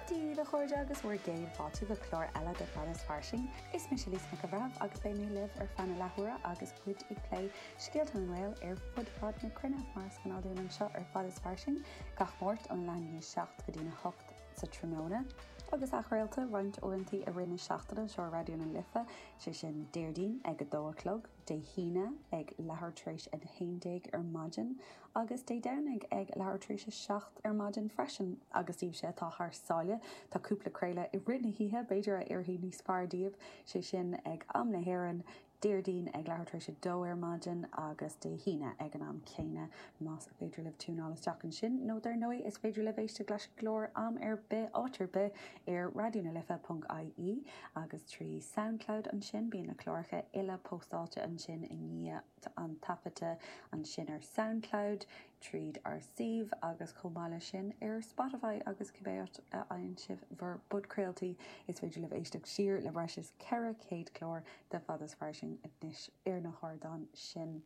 Dia daoibh, a chairde, agus bhur gcéad fáilte go clár eile de Fad is Fairsing. Is mise Lisa Nic an Bhreithimh agus beidh mé libh ar feadh na leathuaire agus muid ag plé scéalta na nGael ar fud fad na cruinne, mar is gnáth dúinn anseo ar Fad is Fairsing gach Máirt ón leath i ndiaidh 7 go dtí an 8 sa tráthnóna. Agus athchraolta roinnt uaireantaí i rith na seachtaine anseo ar Raidió na Life, sé sin Déardaoin ag 2 a chlog, Dé hAoine ag leathuair tar éis a 11 ar maidin agus Dé Domhnaigh ag leathuair tar éis a seacht ar maidin freisin. Agus daoibhse atá thar sáile, tá cúpla craoladh i rith na hoíche, b'fhéidir, a oirfidh níos fearr daoibh, sé sin, ag am na hÉireann, Déardaoin ag leathuair tar éis a dó ar maidin agus Dé hAoine ag an am céanna. Más féidir libh tiúnáil isteach ansin, nó dar ndóigh, is féidir libh éisteacht leis an gclár am ar bith, áit ar bith, ar raidionalife.ie. Agus trí Soundcloud ansin, bíonn na cláracha uile póstáilte ansin i ndiaidh an taifeadta, ansin ar Soundcloud, tríd ár suíomh, agus chomh maith leis sin, ar Spotify agus cibé áit a fhaigheann sibh bhur bpodchraoltaí. Is féidir libh éisteacht siar le breis is 400 clár de fad is fairsing anois ar na hardáin sin.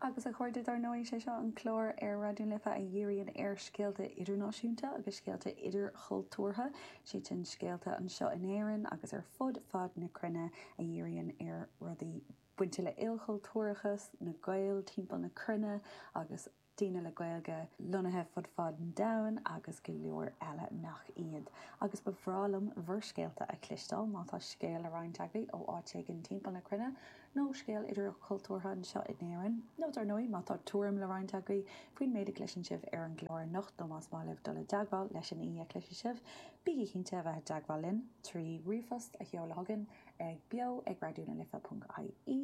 Agus a chairde, dar ndóigh, is é seo an clár ar Raidió na Life a dhíríonn ar scéalta idirnáisiúnta agus scéalta idirchultúrtha. Sé sin scéalta anseo in Éirinn agus ar fud fad na cruinne a dhíríonn ar rudaí bainte le ilchultúrachas, na Gaeil timpeall na cruinne agus. daoine le Gaeilge lonnaithe fud fad an domhain agus go leor eile nach iad. Agus ba bhreá liom bhur scéalta a chloisteáil, má tá scéal le roinnt agaibh ó áit éigin timpeall na cruinne, nó scéal idirchultúrtha anseo in Éirinn, nó dar ndóigh má tá tuairim le roinnt agaibh faoin méid a chloiseann sibh ar an gclár anocht nó más maith libh dul i dteagmháil leis an aoi a chloisfidh sibh, bígí cinnte a bheith i dteagmháil linn trí ríomhphost a sheoladh chugainn ag beo ag raidionalife.ie.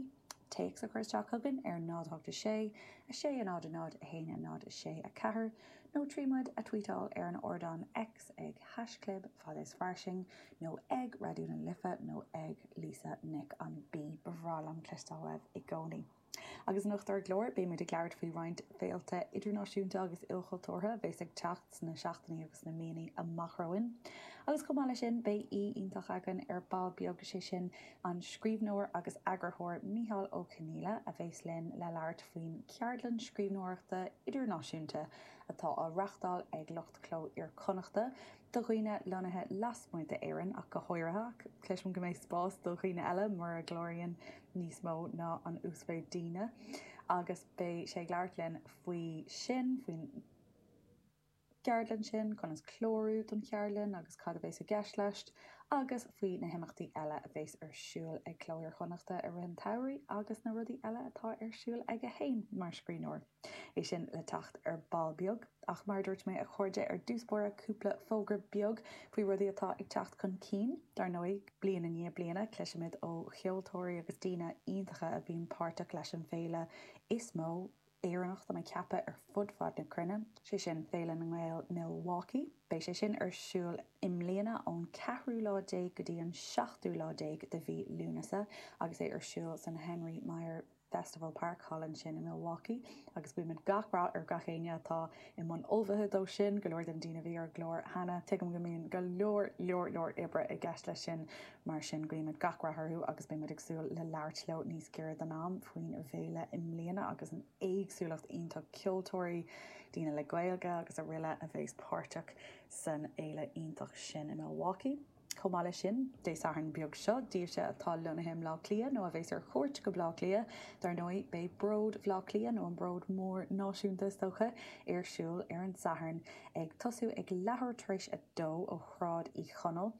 téacs a chur isteach chugainn ar 0 8 6 6 a 0 a 0 a haon a 0 6 4 nó trí muid a tweetáil ar an ardán X ag haischlib fad is fairsing nó ag Raidió na Life nó ag Lisa Nic an B. Ba bhreá liom cloisteáil uaibh i gcónaí. Agus anocht ar an gclár, beidh muid ag labhairt faoi roinnt féilte idirnáisiúnta agus ilchultúrtha a bheas ag teacht sna seachtainí agus sna míonna amach romhainn. Agus chomh maith leis sin, beidh aoi iontach againn ar ball beag, sé sin An scríbhneoir agus eagarthóir Micheál Ó Conghaile a bheas linn le labhairt faoin cheardlann scríbhneoireachta idirnáisiúnta atá á reáchtáil ag lucht Chló Iar-Chonnachta do dhaoine lonnaithe lasmuigh d'Éirinn ach go háirithe, ach cloisim go mbeidh spás do dhaoine eile mura gcláraíonn níos mó ná an uasmhéid daoine agus beidh sé ag labhairt linn faoi sin, faoin. gceardlann sin, conas clárú don cheardlann agus cad a bheas i gceist leis, agus faoi na himeachtaí eile a bheas ar siúl ag Cló Iar-Chonnachta i rith an tsamhraidh agus na rudaí eile atá ar siúl aige féin mar scríbhneoir. É sin le teacht ar ball beag ach mar a dúirt mé a chairde ar dtús báire cúpla fógra beag faoi rudaí atá ag teacht chun cinn. Dar ndóigh, bliain i ndiaidh bliana cloisimid ó cheoltóirí agus daoine iontacha a bhíonn páirteach leis an bhféile is mó, Éireannach dá ceaptha ar fud fad na cruinne, sé sin Féile na nGael Milwaukee. Beidh sé sin ar siúl i mbliana ón ceathrú lá déag go dtí an seachtú lá déag de mhí Lúnasa agus é ar siúl san Henry Maier Festival Park, thall ansin i Milwaukee. Agus guímid gach rath ar gach éinne atá i mbun ullmhaithe dó sin, go leor de na daoine a bhí ar an gclár cheana. Tuigim go mbíonn go leor, leor, leor oibre i gceist leis sin. Mar sin guímid gach rath orthu agus beidh muid ag súil le labhairt leo níos giorra don am faoin bhféile i mbliana agus an éagsúlacht iontach ceoltóirí, daoine le Gaeilge agus aroile a bheas páirteach san fhéile iontach sin i Milwaukee. Chomh maith leis sin, Dé Sathairn beag seo, daoibhse atá lonnaithe i mBleá Cliath nó a bheas ar chuairt go Bleá Cliath, dar ndóigh, beidh Bród Bhleá Cliath nó an Bród Mór Náisiúnta is dócha, ar siúl ar an Satharn, ag tosú ag leathuair tar éis a dó ó Shráid Uí Chonaill.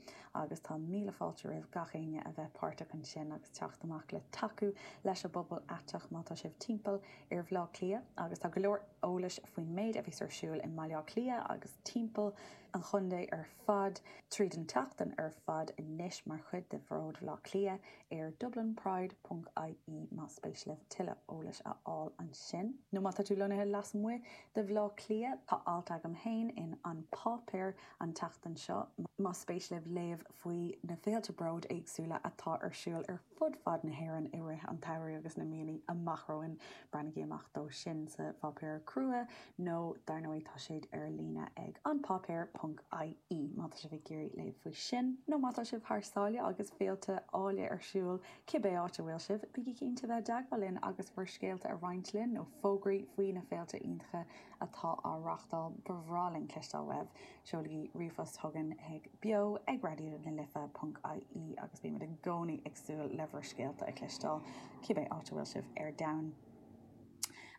agus tá míle fáilte roimh gach éinne a bheith páirteach ansin agus teacht amach le tacú leis an bpobal aiteach má tá sibh timpeall ar Bhaile Átha Cliath agus tá go leor eolais faoin méid a bheas ar siúl i mBaile Átha Cliath agus timpeall an chontae ar fad tríd an tseachtain ar fad anois mar chuid de Bhród Bhaile Átha Cliath ar dublinpride ponc ie más spéis libh tuilleadh eolais a fháil ansin. Nó má tá tú lonnaithe lasmuigh de Bhaile Átha Cliath, tá alt agam féin in An Páipéar an tseachtain seo. Más spéis libh léamh faoi na féilte bróid éagsúla atá ar siúl ar fud fad na hÉireann i rith an tsamhraidh agus na míonna amach romhainn, breathnaigí amach dó sin sa pháipéar crua nó dar ndóigh tá sé ar líne ag An Páipéar ponc IE má tá sibh ag iarraidh léamh faoi sin. Nó má tá sibh thar sáile agus féilte eile ar siúl, cibé áit a bhfuil sibh, bígí cinnte bheith i dteagmháil linn agus bhur scéalta a roinnt linn nó fógraí faoi na féilte iontacha atá á reáchtáil, ba bhreá linn cloisteáil uaibh. Seolaigí ríomhphost chugainn chuig beo ag raidió na life ponc ie agus beidh muid i gcónaí ag súil le bhur scéalta a chloisteáil, cibé áit a bhfuil sibh ar domhan.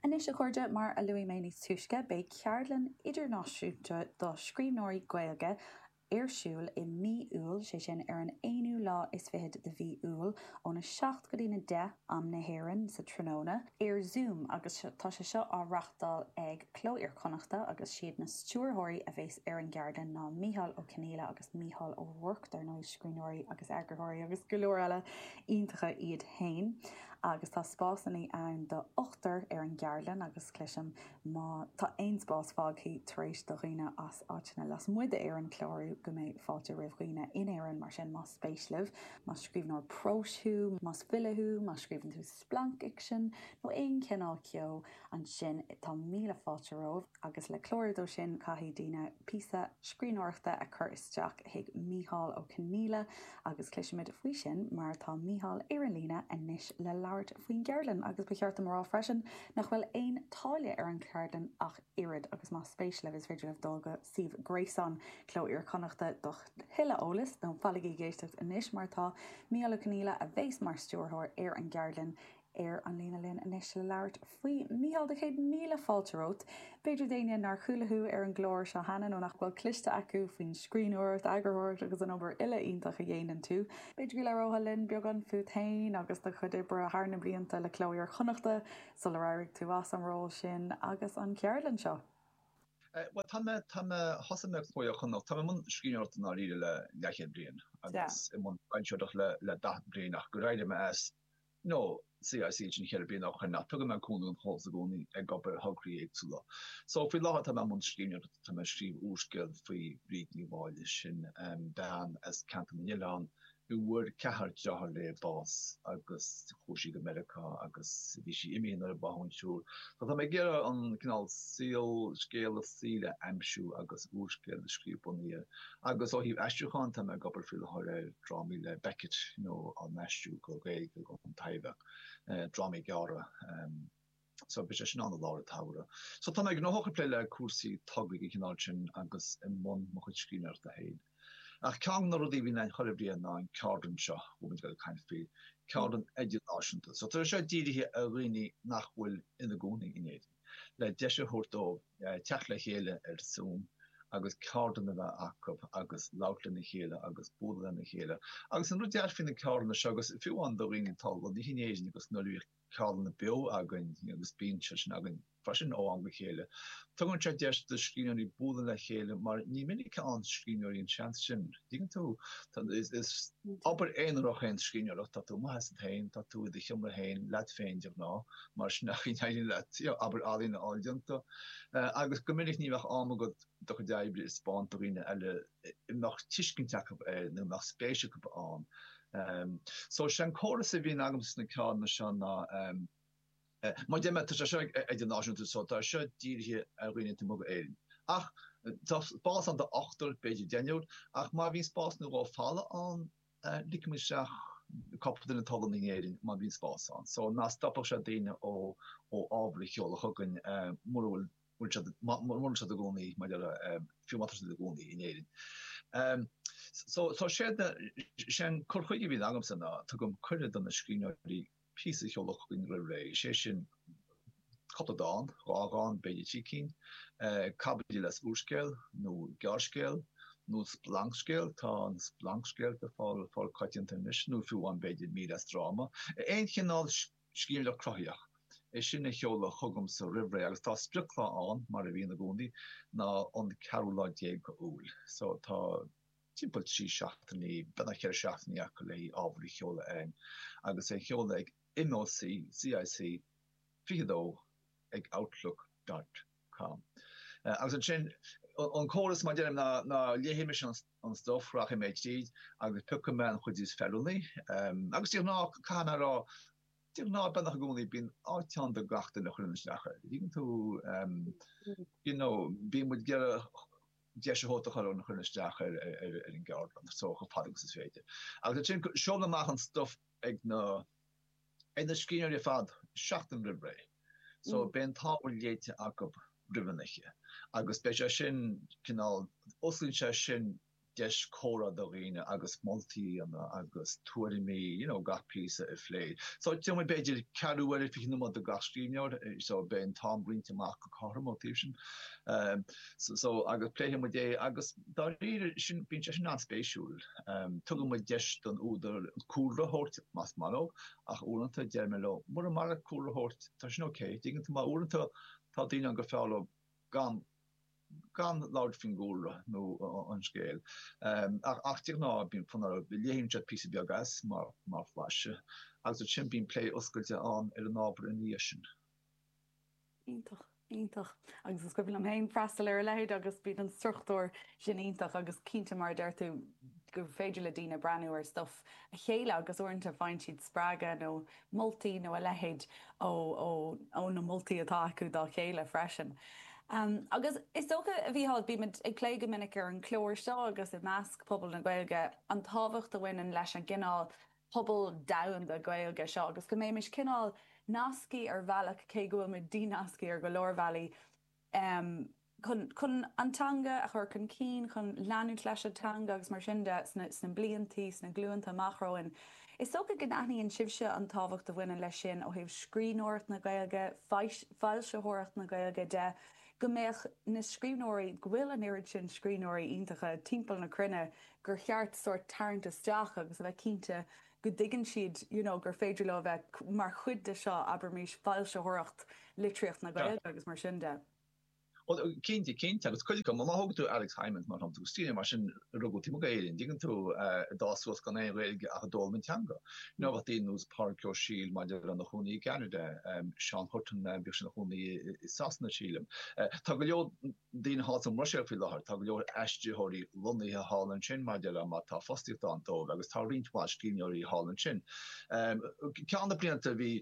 Anois, a chairde, mar a luaigh mé níos túisce, beidh ceardlann idirnáisiúnta do scríbhneoirí Gaeilge, ar siúl i mí Iúil, sé sin ar an 21ú de mhí Iúil, ón 7 go dtí na 10 am na hÉireann sa tráthnóna, ar Zoom agus tá sé seo á reachtáil ag Cló Iar Chonnachta agus siad na stiúrthóirí a bheas ar an gceardlann ná Mícheál Ó Conghaile agus Mícheál Ó Ruairc dar ndóigh, scríbhneoirí agus eagarthóirí agus go leor eile iontacha iad féin agus tá spásanna ann do ochtar ar an gceardlann agus cloisim Má tá aon spás fágthaí tar éis do dhaoine as áiteanna lasmuigh d'Éirinn clárú go mbeidh fáilte roimh dhaoine in Éirinn mar sin más spéis libh, más scríbhneoir próis thú, más file thú, má scríobhann tú splancfhicsean nó aon chineál ceo, ansin tá míle fáilte romhaibh agus le clárú dó sin caithfidh daoine píosa scríbhneoireachta a chur isteach chuig Mícheál Ó Conaola, Agus cloisimid faoi sin mar tá Mícheál ar an líne anois le labhairt faoin gceardlann agus ba cheart dom a rá freisin nach bhfuil aon táille ar an cheardlann ach oiread agus más spéis libh is féidir libh dul go suíomh gréasáin Cló Iar-Chonnachta do thuilleadh eolais nó fanaigí ag éisteacht anois mar tá Mícheál Ó Conaola a bhéas mar stiúrthóir ar an gceardlann ar an líne linn anois le labhairt faoi. Mícheál, tá céad míle fáilte romhat. B'fhéidir d'éinne nár chuala thú ar an gclár seo cheana nó nach bhfuil cloiste acu faoin scríbhneoireacht, eagarthóireacht agus an obair uile iontach a dhéanann tú, b'fhéidir go labhróthá linn beagán fút féin agus do chuid oibre thar na blianta le Cló Iar Chonnachta sular éirigh tú as an ról sin agus an cheardlann seo. Bhuel, tá mé, tá mé, thosaigh mé ag Cló Iar Chonnacht, tá mé i mbun scríbhneoireachta i ndáiríre le leathchéad bliain agus i mbun foilsitheoireacht le daichead bliain ach d'éirigh mé as, nó CIC ansin cheithre bliana ó shin ach tugann mé cúnamh don chomhlacht i gcónaí ag obair ar thograí éagsúla so faoi láthair tá mé i mbun scríbhneoireachta tá mé ag scríobh úrscéal faoi Bhríd Ní Mháille sin bean as ceantar na nOileán a bhfuair ceathrar dearthár léi bás agus chuaigh sí go Meiriceá agus bhí sí imithe nuair a bádh an triúr so tá mé ag iarraidh an cineál saol scéal a saoil a aimsiú agus úrscéal a scríobh bunaithe Agus ó thaobh aistriúcháin, tá mé ag obair faoi láthair ar drámaí le Beckett nó á n-aistriú go Gaeilge don Taibhdhearc, drámaí gearra. So beidh sé sin ann i lár an tsamhraidh. So tá mé gnóthach ag plé le cúpla togra den chineál sin agus i mbun mo chuid scríbhneoireachta féin. Ach ceann de na rudaí a bhíonn againn chuile bhliain ná an cheardlann seo a bhfuil muid ag dul ag caint faoi, ceardlann idirnáisiúnta. So tá sé seo dírithe ar dhaoine nach bhfuil ina gcónaí in Éirinn. le deis a thabhairt dóibh teacht le chéile ar zoom agus ceardlann a bheith acu agus labhairt lena chéile agus bualadh lena chéile agus an rud deas faoi na ceardlanna seo agus fiú amháin do dhaoine atá lonnaithe in Éirinn agus nuair a bhíodh ceardlanna beo againn agus bíonn sé sin againn freisin ó am go chéile tugann sé deis do scríbhneoirí bualadh le chéile mar ní minic a fhaigheann scríbhneoirí an seans sin tuigeann tú is obair aonarach é an scríbhneoireacht tá tú amuigh asat féin tá tú i do sheomra féin leat féin de ghnáth mar sin an chaoi a n-éiríonn leat obair ealaíne a fháil déanta agus go minic ní bheadh am agat do chuid oibre a thaispeáint do dhaoine eile a mbeadh tuiscint acu air nó a mbeadh spéis acu ann so sé an córas a bhíonn agamsa sna ceardlanna seo ná mar deir mé tá sé seo idirnáisiúnta so tá seo dírithe ar dhaoine taobh amuigh d'Éirinn ach tá spás ann do ochtar b'fhéidir deichniúr ach má bhíonn spás nó dhó fágtha ann Ligfidh mé isteach cúpla duine atá lonnaithe in Éirinn má bhíonn spás ann. So ná stopadh sé daoine ó ábhar a sheoladh chugainn mura bhfuil mura bhfuil siad ina gcónaí mar a déarfá, fiú má tá siad ina gcónaí in Éirinn. So is é an cur chuige a bhíonn agamsa ná tugaim cuireadh do na scríbhneoirí píosa a sheoladh chugainn roimh ré, is é sin cúpla dán, dhá dhán, b'fhéidir trí cinn, caibidil as úrscéal nó gearrscéal, nó splancscéal, tá an splancscéal le fáil coitianta anois, nó fiú amháin b'fhéidir mír as dráma. Aon chineál scríbhneoireacht chruthaitheach, é sin a sheoladh chugamsa roimh ré agus tá sprioclá ann, mar a bhíonn i gcónaí, sin an ceathrú lá déag d'Iúil. So tá. timpeall trí seachtainí, beagnach ceithre seachtainí acu le hábhar a sheoladh chugainn agus é a sheoladh ag MOCCIC22 ag outlook dot com. Agus ansin, an córas, mar a deirim, ná léifidh mise an stuif, rachaidh mé tríd agus piocfaidh mé an chuid is feiliúnaí. Agus de ghnáth, caithfidh mé a rá, de ghnáth, beagnach i gcónaí, bíonn áit ann do gach duine a chuireann isteach air. You know, bíonn muid ag iarraidh deis a thabhairt do gach duine a chuireann isteach ar an gceardlann chomh fada agus is féidir. Agus ansin seolaim amach an stuff ag na ag na scríbhneoirí ar fad seachtain roimh ré. So beidh an t-ábhar léite acu roimh an oíche agus beidh sé sin cineál osclaíonn sé sin deis comhrá do dhaoine agus moltaí a dhéanamh agus tuairimí you know gach píosa a phlé. So d'fhéadfadh muid b'fhéidir ceathrú uaire, 20 nóiméad do gach scríbhneoir so beidh an t-am roinnte amach go cothrom ó thaobh sin. So agus pléifidh muid é agus dáiríre sin bíonn sé sin an-spéisiúil. Tugann muid deis don údar cúlra a thabhairt más maith leo ach uaireanta deir mé leo mura maith leat cúlra a thabhairt tá sin ok, tuigeann tú mar uaireanta tá daoine ann gur fearr leo gan gan labhairt faoin gcúlra nó an scéal ach de ghnáth bíonn fonn orthu, léann siad píosa beag as mar mar mhaise agus ansin bíonn plé oscailte ann ar an ábhar ina dhiaidh sin. Iontach, iontach. Agus is cuimhin liom féin freastal ar a leithéid agus bíonn an struchtúr sin iontach agus cinnte mar a deir tú gur féidir le daoine breathnú ar stuif a chéile agus uaireanta faigheann siad spreagadh nó moltaí nó a leithéid ó na moltaí atá acu dá chéile freisin. Agus is dócha a Mhícheáil, bímid ag plé go minic ar an chlár seo agus i measc pobal na Gaeilge an tábhacht a bhaineann leis an gcineál pobal domhanda Gaeilge seo agus go mbeimis cineál nasctha ar bhealach, cé go bhfuil muid dínasctha ar go leor bealaí, chun chun an teanga a chur chun cinn, chun leanúint leis an teanga agus mar sin de sna blianta, sna glúnta amach romhainn. Is dócha go n-aithníonn sibhse an tábhacht a bhaineann leis sin ó thaobh scríbhneoireacht na Gaeilge, foilsitheoireacht na Gaeilge de. go mbeadh na scríbhneoirí, go bhfuil an oiread sin scríbhneoirí iontacha timpeall na cruinne gur cheart sórt tarraingt isteach agus a bheith cinnte go dtuigeann siad you know gur féidir leo a bheith mar chuid de seo, abraimis, foilsitheoireacht litríocht na Gaeilge agus mar sin de. Bhuel, cinnte, cinnte, agus cuidiú má thógann tú Alex Hijmans mar shampla, agus tír mar sin, a rugadh taobh amuigh d'Éirinn, dtuigeann tú, a d'fhás suas gan aon Ghaeilge ach a d'fhoghlaim an teanga. Nó bheadh daoine nós Pádraig Ó Siail mar déarfá ina chónaí i gCeanada, Seán Hutton, bhíodh sé ina chónaí i Sasana sílim. Tá go leor daoine thall sa mBruiséil faoi láthair, tá go leor aistritheoirí lonnaithe thall ansin mar déarfá tá fostaíocht ann dóibh agus tá roinnt mhaith scríbhneoirí thall ansin. Ceann de na blianta bhí,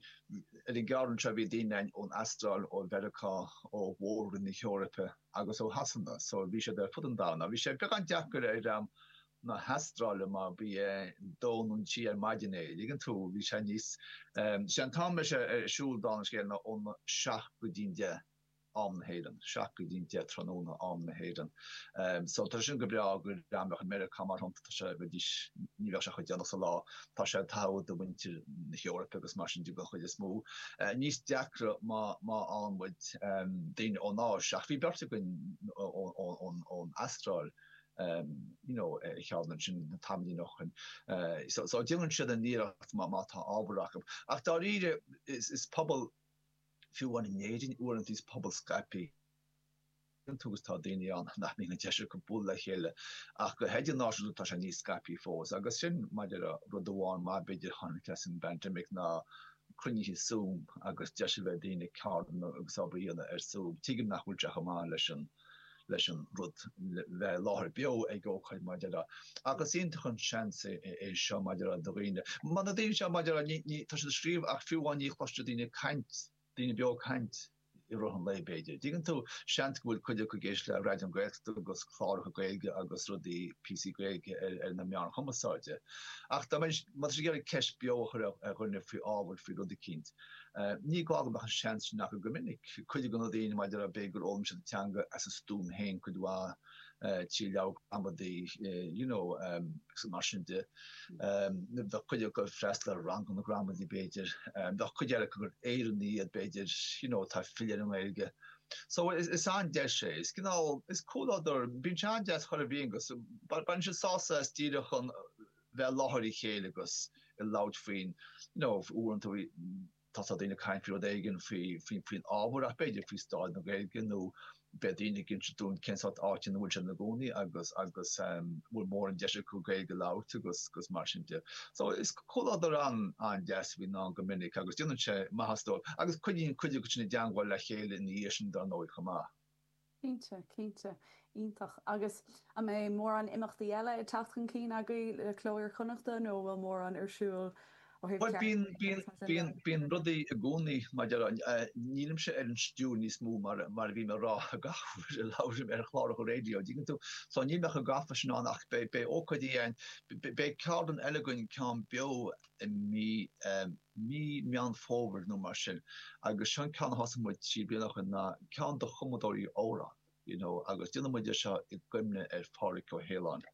ar an gceann seo bhí daoine ann ón Astráil, ó Mheiriceá, ó mhór-roinn na hEorpa. agus ó Shasana. So bhí siad ar fud an domhain. Ach bhí sé beagán deacair ar dhream na hAstráile mar bhí sé a dó nó a trí ar maidin é. dtuigeann tú, bhí sé níos, sé an t-am a raibh sé ar siúl, dála an scéil, ná óna seacht go dtí'n deich, am na hÉireann, seacht go dtí'n deich tráthnóna, am na hÉireann. So tá sé sin go breá, go breá, má tá tú i Meiriceá mar. Tá sé go deas ní bheadh sé chomh déanach sa lá. Tá sé an-fheiliúnach do mhuintir na hEorpa agus mar sin de den chuid is mó. Níos deacra má má fhaigheann muid daoine ón Áis. Ach bhí beirt againn ón ón Astráil you know ar cheann acu sin tamaillín ó shin. So so déanann siad a n-iarracht má má tá ábhar acu. Ach dáiríre is is pobal fiú amháin in Éirinn uaireanta is pobal scaipthe Agus tá daoine ann nach mbíonn an deis acu bualadh le chéile ach go h-idirnáisiúnta tá sé níos scaipthe fós agus sin mar déarfá rud amháin maith b'fhéidir a tháinig as an bpandemic ná cruinnithe Zoom agus deis a bheith ag daoine ceardlanna agus obair a dhéanamh ar Zoom. Tuigim nach bhfuil sé chomh maith leis an leis an rud bheith i láthair beo ag ócáid mar déarfá ach is iontach an seans é seo mar déarfá do dhaoine. Mar na daoine seo mar déarfá tá siad ag scríobh ach fiú amháin ní chloiseann siad daoine ag caint Daoine beo ag caint i rith an lae, b'fhéidir. An dtuigeann tú? Seans go bhfuil cuid acu ag éisteacht le Raidió na Gaeltachta agus cláracha Gaeilge agus rudaí, píosaí Gaeilge ar na meáin chumasáide. Ach má tá siad ag iarraidh ceist beo a chur ar dhuine faoi ábhar, faoi rud eicínt, ní gá go mbeadh an seans sin acu go minic. Cuid de na daoine, mar a déarfá, b'fhéidir gur fhoghlaim siad an teanga as a stuaim féin cuid mhaith. trí leabhair ghramadaí you know agus mar sin de. Bheadh cuid acu ag freastal ar ranganna gramadaí b'fhéidir. Bheadh cuid eile acu gur Éireannaigh iad b'fhéidir you know atá ag filleadh ar an nGaeilge. So is an-deis é. Is cineál, is comhluadar, bíonn sé an-deas, an comhluadar a bhíonn ann agus baineann siad sásamh as díreach chun bheith i láthair a chéile agus ag labhairt faoin you know uaireanta Tá daoine ag caint faoi rud éigin faoin ábhar ach b'fhéidir faoi staid na Gaeilge nó beidh daoine ag inse dúinn cén sórt áit ina bhfuil siad ina gcónaí agus an bhfuil móran deis acu Gaeilge a labhairt agus mar sin de. So is comhluadar an-deas a bhíonn ann go minic agus déanann sé maitheas dóibh agus coinníonn cuid acu sin i dteangmháil le chéile ina dhiaidh sin dar ndóigh chomh maith. Cinnte, cinnte. Iontach. Agus an mbeidh mórán imeachtaí eile ag teacht chun cinn agaibh le Cló Iar-Chonnachta nó an bhfuil mórán ar siúl ó thaobh Bhuel, bíonn, ceardlann agus mar sin de? bíonn, bíonn rudaí i gcónaí maidir, nílimse ar an stiúir níos mó mar a bhím ag rá gach uair a labhraím ar chláracha raidió, tuigeann tú. So níl mé chomh gafa sin ann ach beidh, beidh ócáidí ann, beidh ceardlann eile againn, ceann beo, i mí mí Meán Fómhair nó mar sin agus seo an ceann a thosaigh muid trí bliana ó shin ná ceann do chumadóirí amhrán you know agus déanann muid é seo i gcuimhne ar Phádhraic Ó hAoláin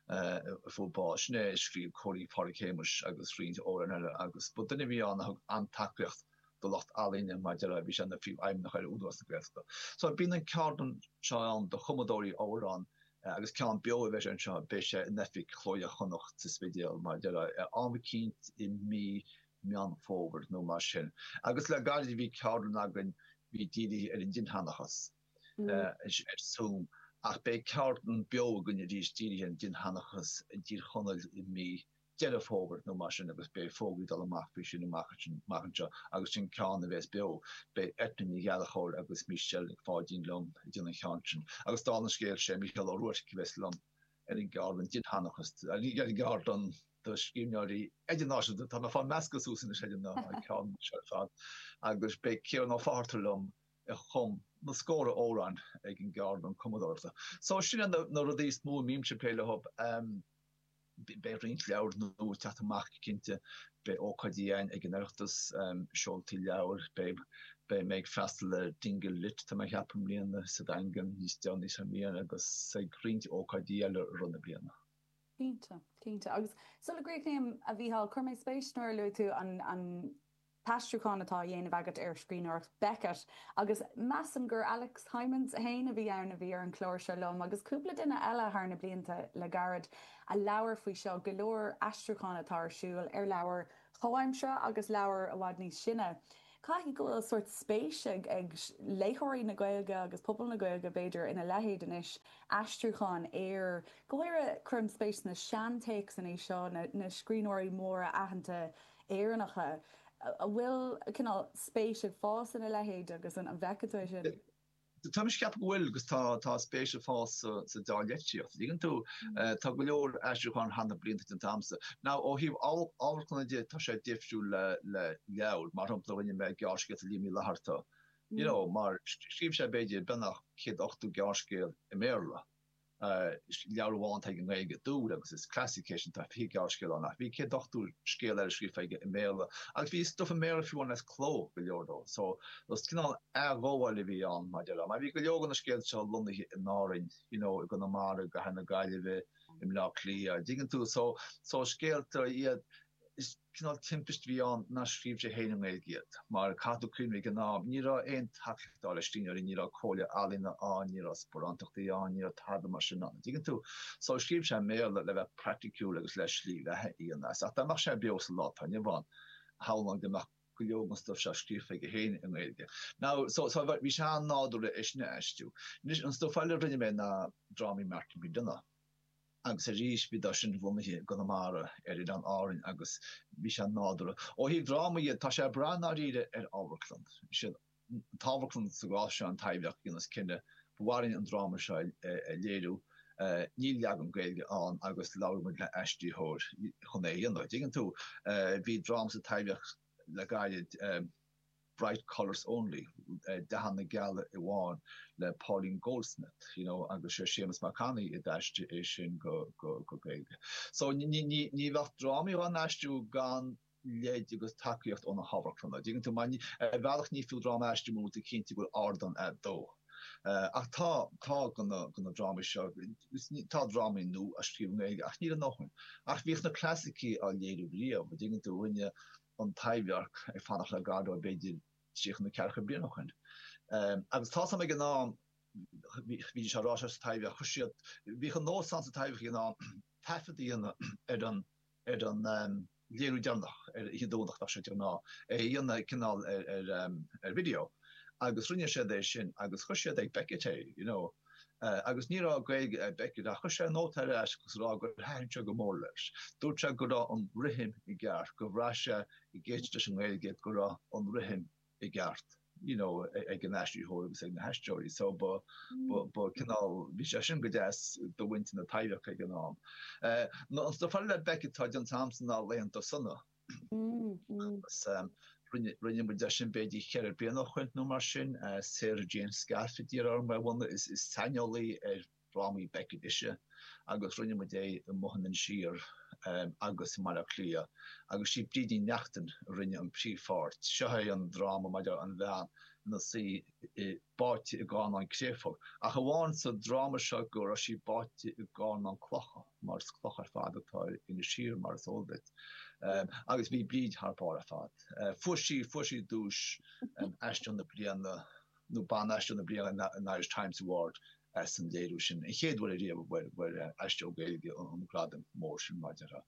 a fuair bás. Sin é a scríobh Cóilín Phádhraic Shéamuis agus roinnt amhrán eile agus ba duine a bhí ann a thug an-tacaíocht do lucht ealaíne mar a déarfá bhí sé ina phríomhfheidhmeannach ar Údarás na Gaeltachta. So bíonn an ceardlann seo ann do chumadóirí amhrán Agus ceann beo a bheas anseo, beidh sé in oifig Chló Iar-Chonnacht sa Spidéal, mar a déarfá, ar am eicínt i mí Meán Fómhair nó mar sin. Agus le gairid bhí ceardlann againn a bhí dírithe ar an dinnsheanchas, ar zoom, ach beidh ceardlann beo againn arís dírithe ar an dinnsheanchas i dTír Chonaill i mí Deireadh Fómhair nó mar sin agus beidh fógraí ag dul amach faoi sin amach anseo agus sin ceann a bheas beo. Beidh Eithne Ní Ghallchobhair agus Michelle Nic Pháidín liom ag déanamh an cheann sin agus dála an scéil sé Mícheál Ó Ruairc a bheas liom ar an gceardlann dinnsheanchas, ar an gceardlann do scríbhneoirí idirnáisiúnta, tá mé ag fáil measctha suas anois ar na ceardlanna seo ar fad, agus beidh Ciarán Ó Fátharta liom a chum na scóra amhráin ag an gceardlann cumadóireachta. So sin iad na rudaí is mó a mbímse ag plé leo. Beidh roinnt leabhair nua ag teacht amach cinnte. Beidh ócáidí ann ag an Oireachtas, seoltaí leabhair. Beidh mé ag freastal ar Dingle Lit tá mé a cheapadh i mbliana, sa Daingean níos déanaí sa mbliain agus ag roinnt ócáidí eile i rith na bliana. Cinnte, cinnte. Agus sula gcríochnaím, a Mhícheáil, chuir mé spéis nuair a luaigh tú an t-aistriúchán atá á dhéanamh agat ar scríbhneoireacht Beckett agus measaim gur Alex Hijmans féin a bhí ann a bhí ar an chlár seo liom agus cúpla duine eile thar na blianta le gairid a labhair faoi seo, go leor aistriúchán atá ar siúl ar leabhair chomhaimseartha agus leabhair i bhfad níos sine. Caithfidh go bhfuil sórt spéis ag léitheoirí na Gaeilge agus pobal na Gaeilge b'fhéidir ina leithéid anois, aistriúchán ar, go háirithe, cuirim spéis sna seantéacsanna seo, na scríbhneoirí móra aitheanta Éireannacha. An bhfuil cineál spéis ag fás ina leithéid agus an bhfeiceann tú sin? Tá mise ag ceapadh go bhfuil agus tá spéis ag fás sa dea-litríocht. An dtuigeann tú. Tá go leor aistriúcháin thar na blianta déanta agamsa. Now ó thaobh amharclanna de tá sé difriúil le leabhair. Mar shampla rinne mé gearrscéalta Liam Uí Fhlaithearta. You know mar scríobh sé b'fhéidir beagnach céad ochtó gearrscéal i mBéarla. leabhar amháin atá i nGaeilge Dúil agus is classic é sin tá fiche gearrscéal ann ach bhí céad ochtó scéal eile scríofa aige i mBéarla agus bhí stuff i mBéarla fiú ann as cló go leor de so is cineál athghabháil a bhí ann i ndáiríre mar bhí go leor de na scéalta seo lonnaithe in Árainn you know i gConamara i gcathair na Gaillimhe i mBleá Cliath a dtuigeann tú so scéalta iad Is cineál timpist a bhí ann nár scríobh sé féin i nGaeilge iad, mar caithfidh tú cuimhneamh ag an am ní raibh aon tacaíocht stáit le scríbhneoirí, ní raibh Comhairle Ealaíon ann, ní raibh sparántachtaí ann, ní raibh tada mar sin ann, an dtuigeann tú? So scríobh sé i mBéarla le bheith praiticiúil agus le slí bheatha a dhéanamh as. Ach dá mbeadh sé beo sa lá atá inniu ann, shamhlóinn go mbeadh go leor den stuif seo scríofa aige féin i nGaeilge. Now, so, so bhí sé an-nádúrtha é sin a aistriú. Anois, an stuif eile a rinne mé ná drámaí Martin McDonagh. Agus arís bhíodar sin lonnaithe i gConamara ar Oileáin Árann agus bhí sé nádúrtha. Ó thaobh drámaí de tá sé ag brath i ndáiríre ar amharclann. Is í an amharclann sa gcás seo an Taibhdhearc a dhéanas cinneadh ba mhaith linn an dráma seo a léiriú. Níl leagan Gaeilge ann agus labhróidh muid le aistritheoir chun é a dhéanamh. Dtuigeann tú, bhí dráma sa Taibhdhearc le gairid. Bright Colours Only, Dathanna Geala Amháin, le Pauline Goldsmith, you know, agus sé Séamus Mac Annaidh a d'aistrigh é sin go Gaeilge. So ní bheadh drámaí á n-aistriú gan lead agus tacaíocht ó na hamharclanna, tuigeann tú, mar ar bhealach ní fiú dráma a aistriú mura bhfuil tú cinnte go bhfuil ardán agat dó. Ach tá, tá gá leis na drámaí seo, tá drámaí nua á scríobh i nGaeilge ach níl a ndóthain. Ach bhíodh na clasaicigh á léiriú riamh, tuigeann tú, rinne, an Taibhdhearc Ag Fanacht le Godot b'fhéidir tríocha nó ceathracha bliain ó shoin. Agus tá sé, bhí sé ag inseacht, bhí sé ag rá seo sa Taibhdhearc, chuir siad, bhíodh an nós ann sa Taibhdhearc ag an am taifead a dhéanamh ar an léiriú deireanach ar oíche Domhnaigh, bheadh sé de ghnáth, é a dhéanamh cineál ar video. Agus rinne siad é sin agus chuir siad ag Beckett é, you know. agus ní raibh Gaeilge ag Beckett ach chuir sé nóta ar ais ag rá gur thaitin sé go mór leis. Dúirt sé go raibh an rithim i gceart, gur bhraith sé ag éisteacht leis an nGaeilge go raibh an rithim i gceart you know ag an aistritheoir agus ag na haisteoirí so ba ba cineál bhí sé sin go deas do mhuintir na Taibhdheirce ag an am. Maidir le Beckett tá déanta agamsa ná Laethanta Sona. agus rinne muid é sin b'fhéidir ceithre bliana ó shin nó mar sin. Sarah Jane Scaife a d'iarr orm é a bhunadh, is saineolaí ar dhrámaí Beckett ise agus rinne muid é amuigh in Inis Oírr agus i mBaile Átha Cliath agus sí Bríd Ní Neachtain a rinne an príomhpháirt. Seo é an dráma maidir an bhean ina suí i báite i gcarnán créafóige, ach amháin sa dráma seo go raibh sí báite i gcarnán clocha, mar is cloch ar fad atá ar Inis Oírr mar is eol duit, agus bhí Bríd thar barr ar fad. Fuair sí, fuair sí duais Aisteoir na Bliana nó Ban-Aisteoir na Bliana an Irish Times Award as an léiriú sin. An chéad uair riamh a bhfuair Aisteoir Gaeilge an gradam mór sin mar atá.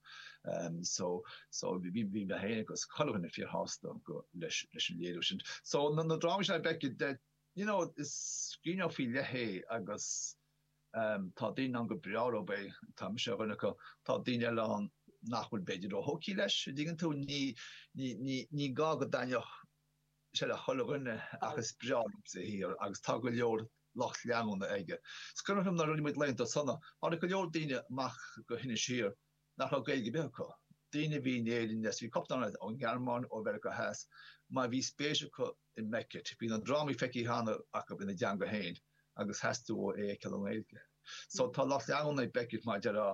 So so bhí mé féin agus chuile dhuine fíor shásta go leis leis an léiriú sin. So na na drámaí seo Beckett de you know is scríbhneoir faoi leith é agus um tá daoine ann gur breá leo é, tá mise ar dhuine acu, tá daoine eile ann nach bhfuil b'fhéidir ró-thógthaí leis, a dtuigeann tú, ní ní ní ní gá go dtaitneodh sé le chuile dhuine ach is breá liomsa a shaothar agus tá go leor lucht leanúna aige. Is cuimhin liom nuair a rinne muid Laethanta Sona, tháinig go leor daoine amach go hInis Oírr nach raibh Gaeilge ar bith acu, daoine a bhí in Éirinn as bhí cúpla eile ón nGearmáin, ó Mheiriceá Theas, mar bhí spéis acu i mBeckett, bhí na drámaí feicthe cheana acu ina dteanga féin agus theastaigh uathu é a fheiceáil i nGaeilge. So tá lucht leanúna ag Beckett mar a déarfá,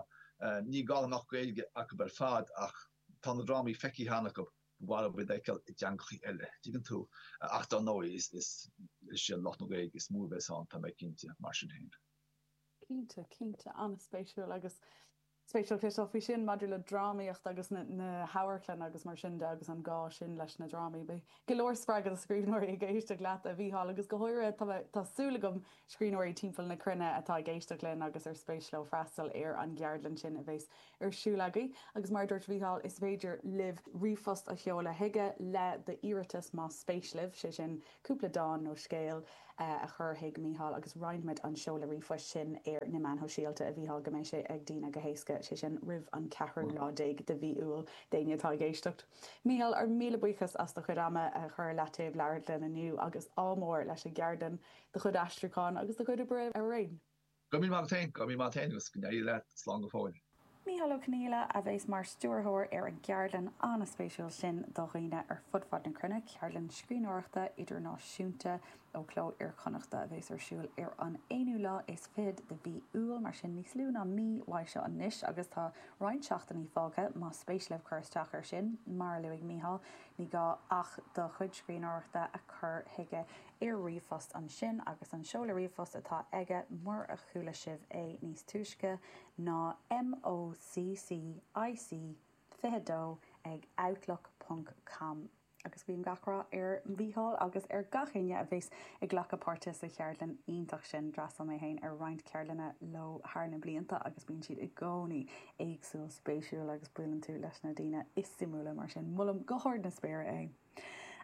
ní gá go mbeadh Gaeilge acu ar fad ach tá na drámaí feicthe cheana acu. mhaith leo iad a fheiceáil i dteangachaí eile, tuigeann tú, ach dár ndóigh is iad lucht na Gaeilge is mó a bheas ann, tá mé cinnte, mar sin féin. Cinnte, cinnte, an-spéisiúil agus spéisiúil cloisteáil faoi sin maidir le drámaíocht agus na hamharclanna agus mar sin de agus an gá sin leis na drámaí. Beidh go leor spreagtha do scríbhneoirí ag éisteacht leat, a Mhícheáil, agus go háirithe tá súil agam scríbhneoirí timpeall na cruinne atá ag éisteacht linn agus ar spéis leo freastal ar an gceardlann sin a bheas ar siúl agaibh. Agus mar a dúirt Mícheál, is féidir libh ríomhphost a sheoladh chuige le d'iarratas más spéis libh, sé sin, cúpla dán nó scéal a chur chuig Mícheál agus roinnfimid an seoladh ríomhphoist sin ar na meáin shóisialta, a Mhícheál, go mbeidh sé ag daoine go héasca, sé sin, roimh an ceathrú lá déag de mhí Iúil. D'éinne atá ag éisteacht. Mícheál, ár míle buíochas as do chuid ama a chur i leataobh le labhairt linn inniú agus ádh mór leis an gceardlann. do chuid aistriúcháin agus do chuid oibre araon. Go raibh míle maith agat féin. Go raibh míle maith agat féin agus go n-éirí leat. Slán go fóill. Mícheál Ó Conghaile a bheas mar stiúrthóir ar an gceardlann an-spéisiúil sin do dhaoine ar fud fad na cruinne, ceardlann scríbhneoireachta idirnáisiúnta ó Chló Iar-Chonnachta, a bheas ar siúl ar an aonú lá is fichead de mhí Iúil, mar sin níos lú ná mí uaidh seo anois, agus tá roinnt seachtainí fágtha más spéis libh cur isteach air sin. Mar a luaigh Mícheál, ní gá ach do chuid scríbhneoireachta a chur chuige. Iarr ríomhphost ansin agus an seoladh ríomhphost atá aige murar chuala sibh é níos túisce ná MOC CIC22 ag outlook ponc com. Agus guím gach rath ar Mhícheál agus ar gach éinne a bheas ag glacadh páirte sa cheardlann iontach sin. D'fhreastail mé féin ar roinnt ceardlanna leo thar na blianta agus bíonn siad i gcónaí éagsúil spéisiúil agus buaileann tú leis na daoine is suimiúla mar sin molaim go hard na spéire é.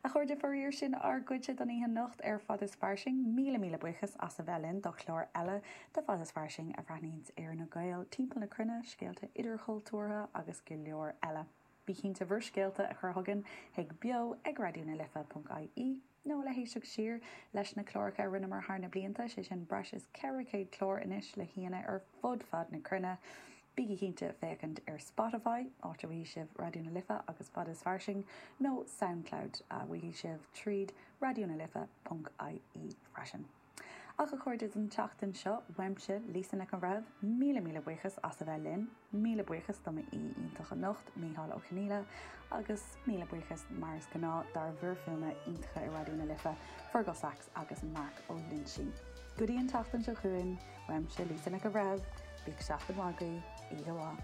A chairde, faraor sin ár gcuidse don oíche anocht ar Fad is Fairsing. Míle míle buíochas as a bheith linn do chlár eile de Fad is Fairsing a bhreathnaíonns ar na Gaeil timpeall na cruinne, scéalta idirchultúrtha agus go leor eile. Bí cinnte bhur scéalta a chur chugainn chuig beo ag raidió na life ponc ie nó le héisteacht siar leis na cláracha a rinneamar thar na blianta, sé sin breis is 400 clár anois le haíonna ar fud fad na cruinne. Bígí cinnte féachaint ar Spotify, áit a bhfaighidh sibh Raidió na Life agus Fad is Fairsing, nó Soundcloud, a bhfaighidh sibh tríd raidió na life ponc ie, freisin. Ach, a chairde, don tseachtain seo, uaimse, Lisa Nic an Bhreithimh, míle míle buíochas as a bheith linn, míle buíochas do m'aoi iontach anocht, Micheál Ó Conghaile, agus míle buíochas, mar is gnáth, dár bhfir fuaime iontacha i Raidió na Life, Fearghal Saxe. agus Marc Ó Loinsigh. Go dtí an tseachtain seo chugainn, uaimse Lisa Nic an Bhreithimh, bíodh seachtain mhaith agaibh, oíche mhaith.